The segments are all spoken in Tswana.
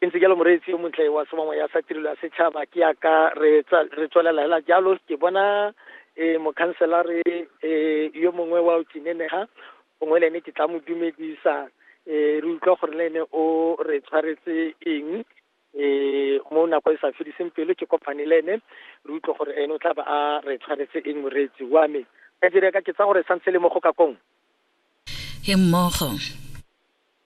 Ke ntse jalo moreetsi yo montle wa sebamoya sa tirelo ya setšhaba ke yaka re tswelela hela jalo ke bona e mokhanselare e yo mongwe wa o tsinenega gongwe le ene ke tla mo dumedisa e re utlwa gore le ene o re tshwaretse eng e mo nako e sa fediseng pelo ke kopane le ene re utlwa gore ene o tla ba a re tshwaretse eng moreetsi wa me ka direka ke tsa gore santse le mo go ka kong he mmogo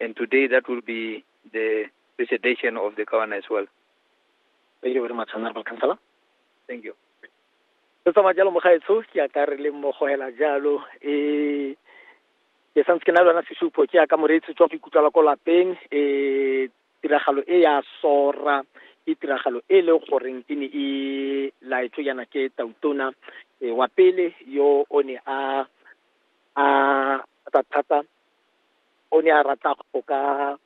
And today that will be the presentation of the governor as well. Thank you very much, Honorable Councillor. Thank you. Re tsamaya jalo mo gaetsho ke ya ka re le mo gohela jalo eh ke santse ke na le yona sesupo ke ya ka moreetsi tswa go ikutlwela ko lapeng eh tiragalo e ya sora ke tiragalo e le goreng e ne e laetswe yana ke tautona eh, wa pele yo o ne a a thata thata o ne a rata go ka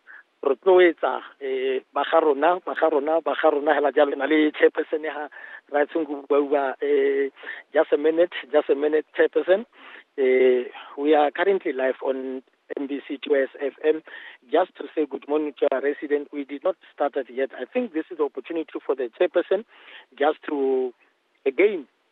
rotloetsa um ba ga rona ba ga rona ba ga rona hela jalo na le chairperson ya raetseng go buaua um just a minute just a minute chairperson um we are currently live on mbc 2 sfm just to say good morning to our resident we did not start it yet i think this is the opportunity for the chairperson just to again